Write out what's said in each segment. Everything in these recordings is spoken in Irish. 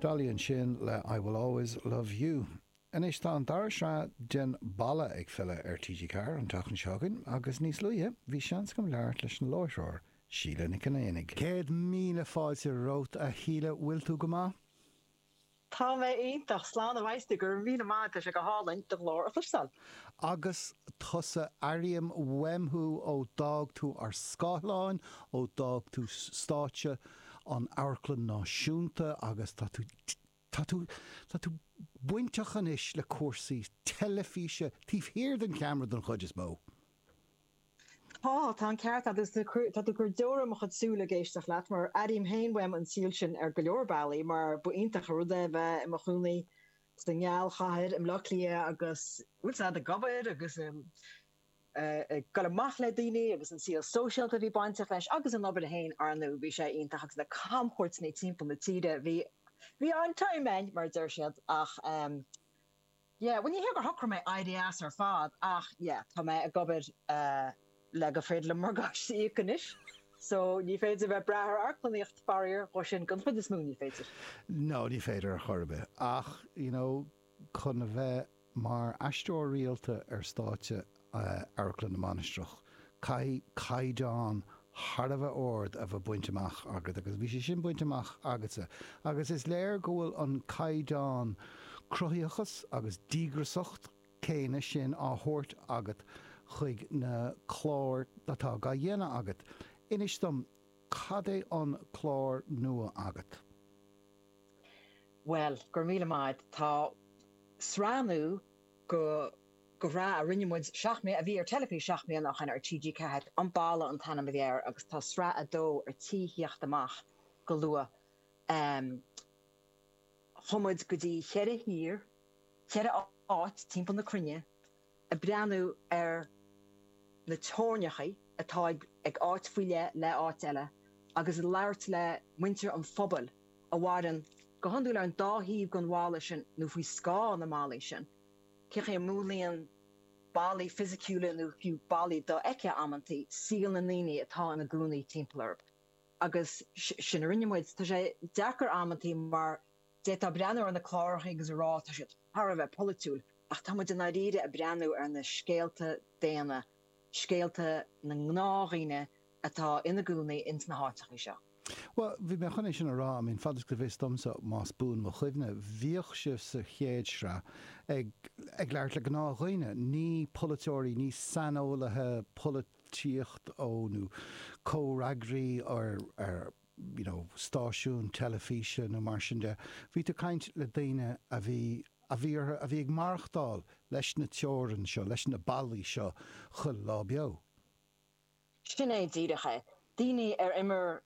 Dolly ansin le I Will Always Love You. Anois tá an dara sraith de An Balla ag filleadh ar TG4 an tseachtain seo chugainn agus níos luaithe bhí seans agam labhairt leis an láithreoir, Síle Nic Chonaonaigh. Céad míle fáilte romhat a Shíle, bhfuil tú go maith? Tá mé iontach ag plé leis a Mhaghsti, go raibh míle maith agat, tá sé go hálainn do ghlór a chloisteáil. Agus tusa, airím uaim thú ó d'fhág tú ár scáileáin, ó d'fhág tú stáitse na hAmharclainne Náisiúnta agus tá tú, tá tú, tá tú bainteach anois le cúrsaí teilifíse, taobh thiar den cheamara don chuid is mó. Tá, tá an ceart agat, agus tá tú ag cur deora i mo chuid súl ag éisteacht leat, mar airím féin uaim an saol sin ar go leor bealaí, mar ba iontach an rud é bheith i mo chónaí sa nGealchathair, i mBleá Cliath agus, bhuel, 's agat ag obair agus ag goil amach le daoine agus an saol sóisialta a bhí bainteach leis agus an obair féin, ar ndú, bhí sé iontach agus na camchuairteanna timpeall na tíre, bhí, bhí an-time ann, mar a deir siad, ach. yeah bhuel ní hé gur shocraigh mé éirí as ar fad ach yeah tá mé ag obair le gur féidir liom morgáiste a íoc anois so ní féidir bheith ag brath ar amharclannaíocht faraor dhó sin don chuid is mó ní féidir. no ní féidir ar chor ar bith ach you know chun a bheith mar aisteoir rialta ar stáitse Amharclann na Mainistreach. Caithfidh caighdeán thar a bheith ard a bheith bainte amach agat agus bhí sé sin bainte amach agatsa agus is léir go bhfuil an caighdeán cruthaitheachais agus díograsacht céanna sin á thabhairt agat chuig na cláir atá dá dhéanamh agat. Inis dom, cad é an clár nua agat? Bhuel, go raibh míle maith agat. Tá sraith nua de. de shraith a rinne muid seacht mbliana, a bhí ar teilifís seacht mbliana ó shin ar TG4, An Balla an t-ainm a bhí air agus tá sraith a dó ar tí theacht amach go luath. Chuaigh muid go dtí cheithre thír, cheithre áit timpeall na cruinne ag breathnú ar na teorainneacha atá idir áit faoi leith agus áit eile agus ag labhairt le muintir an phobail a mhaireann go hiondúil ar an dá thaobh den bhalla sin nó faoi scáth na mballaí sin. Cén chaoi a múnlaíonn ballaí fisiciúla nó fiú ballaí dofheicthe amantaí, saol na ndaoine atá ina gcónaí timpeall orthu. Agus sin a rinne muid. Tá sé deacair amantaí mar d'fhéadfá breathnú ar na clárachaí agus a rá tá siad thar a bheith polaitiúil ach tá muid i ndáiríre ag breathnú ar na scéalta daonna, scéalta na ngnáthdhaoine. atá ina gcónaí ins na háiteachaí seo. Bhuel, bhí mé chun é sin a rá, I mean, fad is go bhfios domsa, más buan mo chuimhne, bhíodh sibh sa chéad sraith ag, ag labhairt le gnáthdhaoine, ní polaiteoirí, ní saineolaithe polaitíocht ó nó comhfhreagraí ar ar, you know, stáisiún teilifíse nó mar sin de, bhí tú ag caint le daoine a bhí, a bhí orthu, a bhí ag maireachtáil leis na teorainn seo, leis na ballaí seo chuile lá beo. Sin é díreach é. Daoine ar imir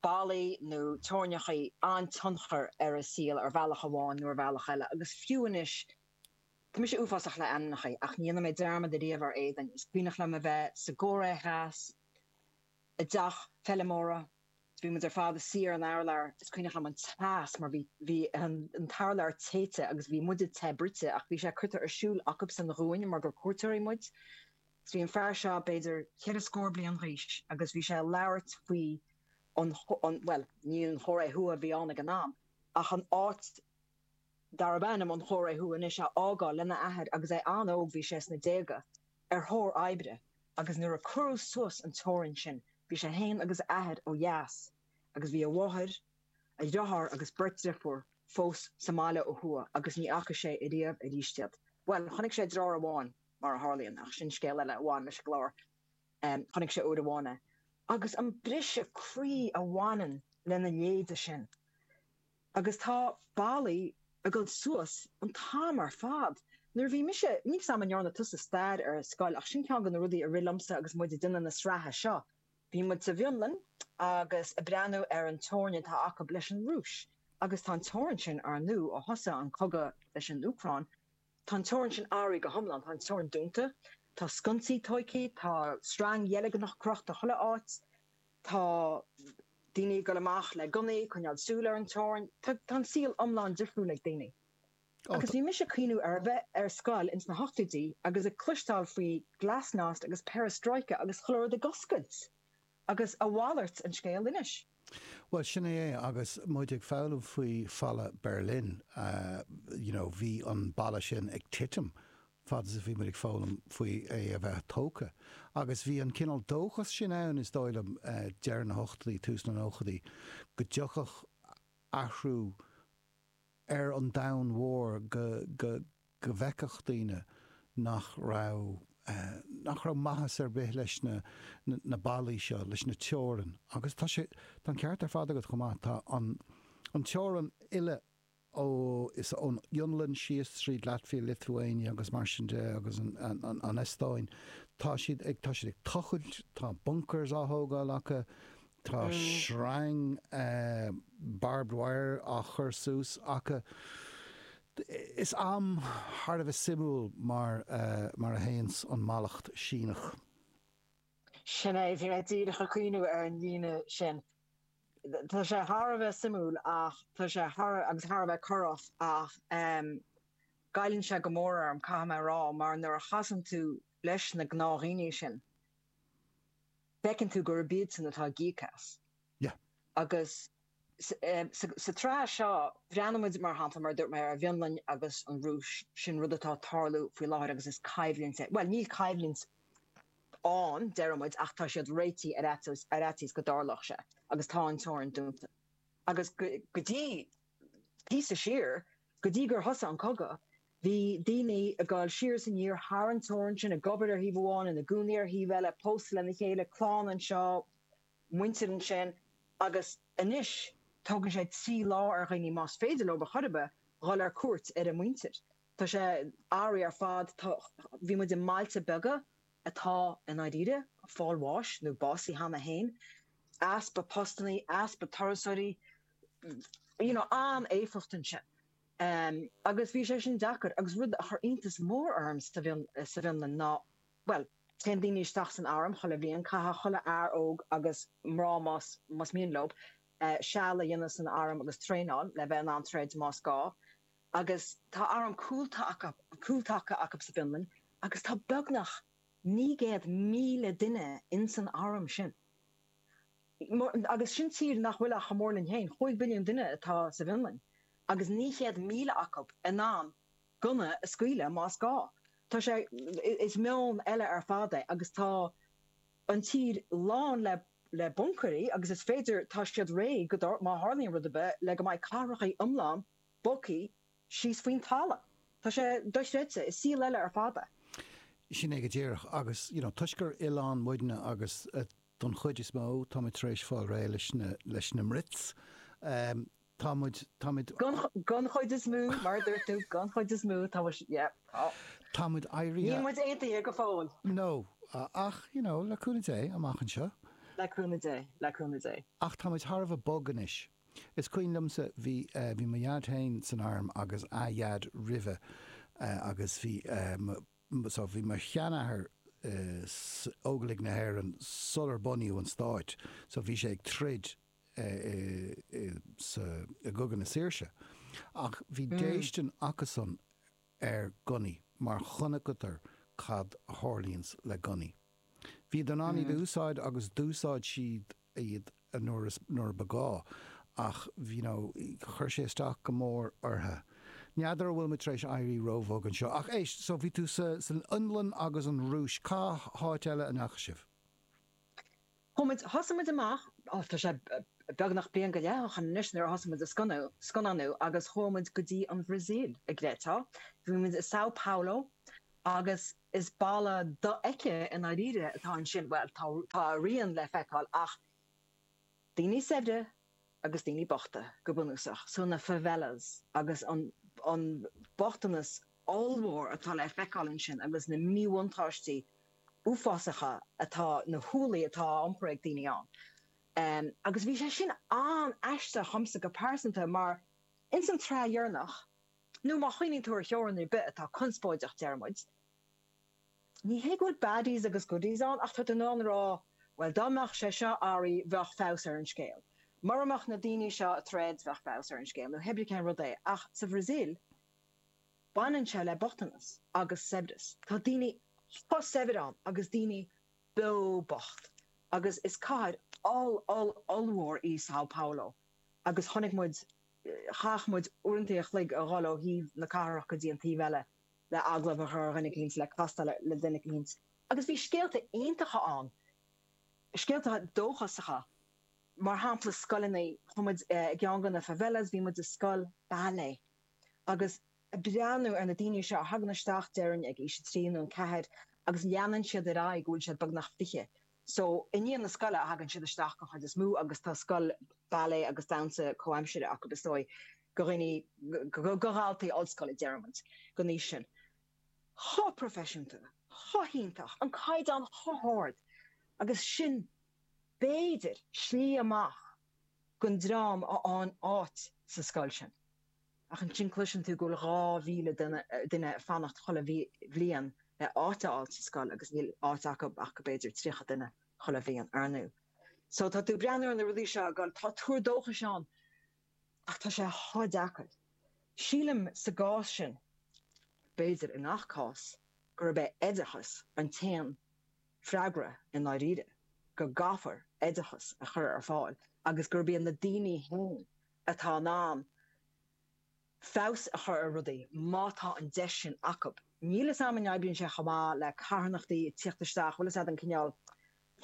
ballaí nó teorainneacha an-tionchar ar a saol ar bhealach amháin nó ar bhealach eile. Agus fiú anois, tá mise uafásach le ainmneacha ach ní dhéanfaidh mé dearmad ariamh ar éadan. Is cuimhneach liom a bheith sa gCóiré Theas, i dteach feilmeora, is bhí muid ar fad inár suí ar an urlár. Is cuimhneach liom an teas mar bhí bhí an t-urlár téite agus bhí muide te bruite ach bhí sé curtha ar siúl acubsan dhúinn mar gur cuairteoirí muid. Bhí an fear seo b'fhéidir cheithre scór bliain g'aois agus bhí sé ag labhairt faoi an, an, bhuel ní an Chóiré Thuaidh a bhí ann ag an am ach an áit darb ainm an Chóiré Thuaidh anois a fhágáil lena athair agus é an-óg, bhí sé sna déaga, ar thóir oibre agus nuair a cuireadh suas an teorainn sin bhí sé fhéin agus a athair ó dheas agus bhí a mháthair, a dhriotháir agus beirt driofúr fós sa mbaile ó thuaidh agus ní fhaca sé ariamh arís iad. Bhuel chonaic sé driotháir amháin. mar a tharlaíonn, ach sin scéal eile a bhain leis an gclár. Chonaic sé uair amháin é, agus an briseadh croí a bhaineann lena leithéide sin. Agus tá ballaí ag dul suas an t-am ar fad. Nuair a bhí mise, níl fhios agam an ndearna tusa stair ar scoil, ach sin ceann de na rudaí a rith liomsa agus muid ag déanamh na sraithe seo. Bhí muid sa bhFionlainn agus ag breathnú ar an teorainn atá acu leis an Rúis, agus tá an teorainn sin ár ndú ó thosaigh an cogadh leis an Úcráin. Tá an teorainn sin athraithe go hiomlán. Tá an teorainn dúnta. Tá sconsaí tóigthe. Tá sreang dheilgneach crochta chuile áit. Tá daoine ag dul amach le gunnaí, coinneáil súil ar an teorainn. Tá an saol iomlán difriúil ag daoine. Agus bhí mise ag cuimhneamh ar a bheith ar scoil ins na hochtóidí agus ag cloisteáil faoi glasnost agus perestroika agus chuile rud ag oscailt. Agus a mhalairt an scéal anois. Bhuel, sin é é. Agus muid ag foghlaim faoi Bhalla Berlin, you know, bhí an balla sin ag titim fad is a bhí muid ag foghlaim faoi é a bheith tógtha. Agus bhí an cineál dóchas sin ann, is dóigh liom, deireadh na hochtaidí, tús na nóchaidí, go dtiocfadh athrú ar an domhan mhór, go, go bhfeicfeadh daoine nach raibh, nach raibh maitheas ar bith leis na, na ballaí seo, leis na teorainneacha agus tá sé, tá an ceart ar fad agat chomh maith, tá an, an teorainn uile ó, is ón Fhionlainn síos tríd Latvia, Lithuania agus mar sin de agus an, an, an Eastóin, tá siad ag, tá siad ag tochailt, tá bunkers á thógáil acu, tá sreang barbed wire á chur suas acu, Is am thar a bheith suimiúil mar, mar a théanns an mallacht Síneach. Sin é, bhí mé díreach ag cuimhneamh ar an líne sin. Tá sé thar a bheith suimiúil ach tá sé thar, agus thar a bheith corrach ach ehm goilleann sé go mór orm, caithfidh mé a rá, mar nuair a chasann tú leis na gnáthdhaoine sin, feiceann tú gurb iadsan atá ag íoc as. Yeah. Agus. Sa tsraith seo, breathnaímid, mar shampla, mar a dúirt mé, ar an bhFionlainn agus an Rúis, sin rud atá ag tarlú faoi láthair agus is coimhlint é, bhuel, níl coimhlint ann, deirimid, ach tá siad réitithe ar fhaitíos go dtarlódh sé agus tá an teorainn dúnta. Agus go dtí píosa siar, go dtí gur thosaigh an cogadh, Bhí daoine ag gabháil siar is aniar thar an teorainn sin, ag obair ar thaobh amháin, ina gcónaí ar thaobh eile, pósta lena chéile, clann anseo, muintir ansin, agus anois tógann sé trí lá ar dhaoine, más féidir leo, ar chor ar bith, dhul ar cuairt ar a muintir. Tá sé an-aisteach ar fad. Tá, bhí muid i mbailte beaga atá i ndáiríre ag fáil bháis nó básaithe cheana féin. Easpa postannaí, easpa turasóirí, you know, an-éifeacht ansin. Agus bhí sé sin deacair. Agus rud a chuir iontas mór orm sa bhFionlainn ná, bhuel, téann daoine isteach san arm chuile bhliain, caithfidh chuile fhear óg agus mná más mian leo seal a dhéanamh san arm agus traenáil le bheith in ann troid más gá. Agus tá arm cúltaca acu sa bhFionlainn agus tá beagnach naoi gcéad míle duine insan arm sin. Agus sin tír nach bhfuil ach ar nós muid féin, chúig mhilliún duine atá sa bhFionlainn, agus naoi chéad míle acu in ann gunna a scaoileadh más gá. Tá sé, is meon eile ar fad é agus tá an tír lán le, le buncaeirí agus is féidir, tá siad réidh go, má tharlaíonn rud ar bith, le go mbeidh cathracha iomlán, b'fhéidir, síos faoin talamh. Tá sé dochreidte. Is saol eile ar fad é. Sin é go díreach. Agus, you know, toisc gur oileán muidne agus don chuid is mó táimid tar éis fáil réidh leis na Brits, tá muid, tá muid. Don chuid is mó, mar a dúirt tú, don chuid is mó tá muid, yeah, tá. Tá muid éirithe. Níl muid aontaithe go fóill. No. Ach, you know, le cúnamh Dé, amach anseo. Le cúnamh Dé. Le cúnamh Dé. Ach tá muid thar a bheith bog anois. Is cuimhin liomsa, bhí, bhí mo Dhaid féin san arm agus a Dhaid roimhe agus bhí mo, so bhí mo sheanathair sa, Óglaigh na hÉireann sular bunaíodh an Stát so bhí sé ag troid i, sa, i gCogadh na Saoirse ach bhí déistin acusan ar ghunnaí mar chonaiceadar cad a tharlaíonns le gunnaí. Bhíodar in ann iad a úsáid agus d'úsáid siad iad nuair ba gá ach you know chuir sé isteach go mór orthu. N'fheadar an bhfuilimid tar éis éirí róbhog anseo. Ach éist, so bhí tú san Fhionlainn agus an Rúis, cá háit eile a ndeachaidh sibh? Chuaigh muid, thosaigh muid amach, oh tá sé beagnach bliain go leith ó shoin anois nuair a thosaigh muid ag scannánú agus chuaigh muid go dtí an Bhrasaíl an gcreidfeá, bhí muid i Sao Paulo agus is balla dofheicthe i ndáiríre atá ansin, bhuel tá, tá a rian le feiceáil ach daoine saibhre, agus daoine bochta go bunúsach, so na favelas agus an an bochtanas ollmhór atá le feiceáil ansin agus na míbhuntáistí uafásacha atá, na hualaí atá á iompar ag daoine ann. Em agus bhí sé sin an-aisteach dhomsa go pearsanta mar ins an tsraith dheireanach, nó má chuimhníonn tú ar theorainn ar bith atá conspóideach déarfaidh muid, Ní hé go bhfuil baddies agus goodies ann ach tá tú in ann a rá bhuel dá mbeadh sé seo athraithe bheadh feabhas ar an scéal. Mura mbeadh na daoine seo i dtreis bheadh feabhas ar an scéal nó hé bí cén rud é ach sa Bhrasaíl baineann sé le bochtanas agus saibhreas. Tá daoine chomh saibhir ann agus daoine beo bocht agus is cathair oll oll ollmhór í Sao Paulo agus chonaic muid chaith muid uaireanta an chloig ag dul ó thaobh na cathrach go dtí an taobh eile le agallamh a chur ar dhuine eicínt, le castáil le duine eicínt. Agus bhí scéalta iontacha ann, scéalta dóchasacha. Mar shampla scoileanna, chuaigh muid i gceann de na favelas, bhí muid i scoil ballet. Agus ag breathnú ar na daoine seo a thagann isteach déarfainn ag aois a trí nó a ceathair agus leanann siad ar aghaidh go bhfuil siad beagnach fiche, So, i ndiaidh na scoile a thagann siad isteach den chuid is mó agus tá scoil ballet agus damhsa comhaimsire acu, is dóigh, do dhaoine, do dhaltaí ollscoile, deirimid, den aois sin. Chomh proifisiúnta, chomh hiontach, an caighdeán chomh hard agus sin b'fhéidir slí amach don dream a fhaigheann áit sa scoil sin. Ach ansin cloiseann tú go bhfuil 2,000 duine ag fanacht chuile bhliain le áit a fháil sa scoil agus níl áit acu ach go b'fhéidir 30 duine chuile bhliain. Ar ndú so tá tú ag breathnú ar na rudaí seo agus tá tuar dóchais ann ach tá sé chomh deacair. Sílim sa gcás sin, b'fhéidir i ngach cás, gurb é oideachas an t-aon freagra i ndáiríre, go gcaithfear oideachas a chur ar fáil agus gurb iad na daoine féin atá in ann feabhas a chur ar rudaí, má tá an deis sin acu. Níl fhios a'm an oibríonn sé chomh maith le carthanachtaí ag tíocht isteach, bhfuil fhios a'd an cineál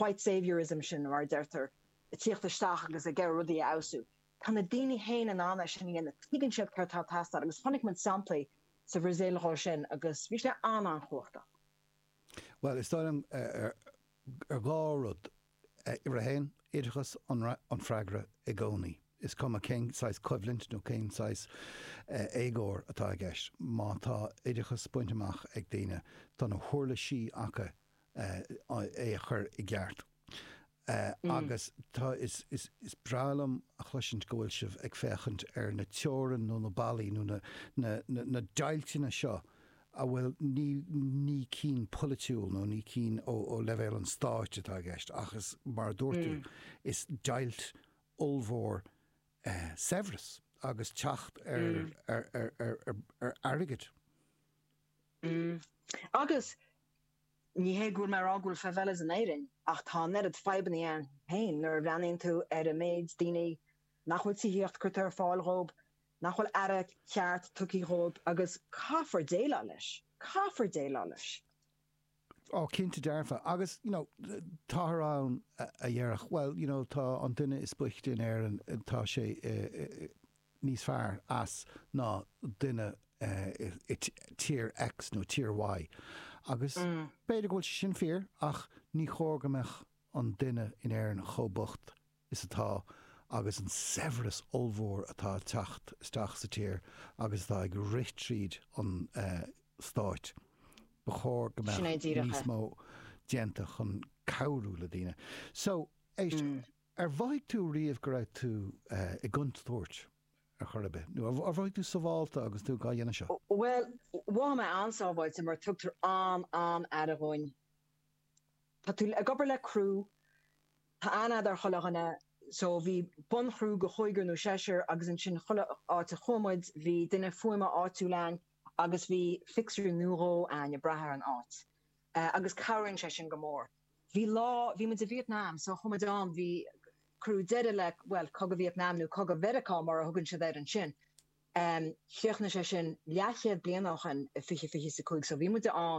white saviour-ism sin mar a deirtear, ag tíocht isteach agus ag iarraidh rudaí a fheabhsú. Tá na daoine fhéin in ann é sin a dhéanamh, tuigeann siad céard atá ag teastáil agus chonaic muid samplaí sa Bhrasaíl dhe sin agus bhí sé an-an-chumhachtach. Bhuel, is dóigh liom, Dhá rud. Uimhir a haon, oideachas an freagra i gcónaí, is cuma cén saghas coimhlint nó cén saghas éagóir atá i gceist. Má tá oideachas bainte amach ag daoine, tá na huirlisí acu é a chur i gceart. Agus tá, is breá liom a chloisint go bhfuil sibh ag féachaint ar na teorainn nó na ballaí nó na deighilteanna seo, a bhfuil ní ní cinn polaitiúil nó ní cinn ó ó leibhéal an stáit atá i gceist ach is mar a dúirt tú is deighilt ollmhór i saibhreas agus teacht ar ar ar ar ar airgead. Agus ní hé go bhfuil mé ag rá go bhfuil favelas in Éirinn ach tá an oiread fadhbannaí ann féin nuair a bhreathnaíonn tú ar an méid daoine nach bhfuil tithíocht curtha ar fáil dhóib nach bhfuil aire ceart tugtha dhóib agus caithfear déileáil leis. Caithfear déileáil leis. Ó cinnte dearfa. Agus, you know, táthar ann a dhéarfadh, bhuel, you know, tá an duine is boichte in Éirinn, tá sé níos fearr as ná duine i tír X nó tír Y. Agus b'fhéidir go bhfuil sé sin fíor ach ní chóir go mbeadh an duine in Éirinn chomh bocht is atá agus an saibhreas ollmhór atá ag teacht isteach sa tír agus atá ag rith tríd an Stát, ba chóir go mbeadh níos mó déanta chun cabhrú le daoine. So, éist, ar mhothaigh tú riamh go raibh tú i gcontúirt ar chor ar bith, nó ar mhothaigh tú sábháilte agus tú dhá dhéanamh seo? Bhuel, mhothaigh mé an-sábháilte mar tugtar an-an-aire dhúinn. Tá tú ag obair le crew Tá an-ádh ar chuile dhuine so bhí bun-chriú de chúigear nó seisear agus ansin chuile áit a chuaigh muid bhí duine fuaime áitiúil a'ainn agus bhí fixer nó dhó a'ainn ag brath ar an áit agus cabhraíonn sé sin go mór. Bhí lá, bhí muid i Vietnam so chuaigh muid ann, bhí, cuireadh deireadh le, bhuel, Cogadh Vietnam nó Cogadh Mheiriceá mar a thugann siad air ansin. Chríochnaigh sé sin leath-chéad bliain ó shin i fiche fiche is a cúig so bhí muid ann,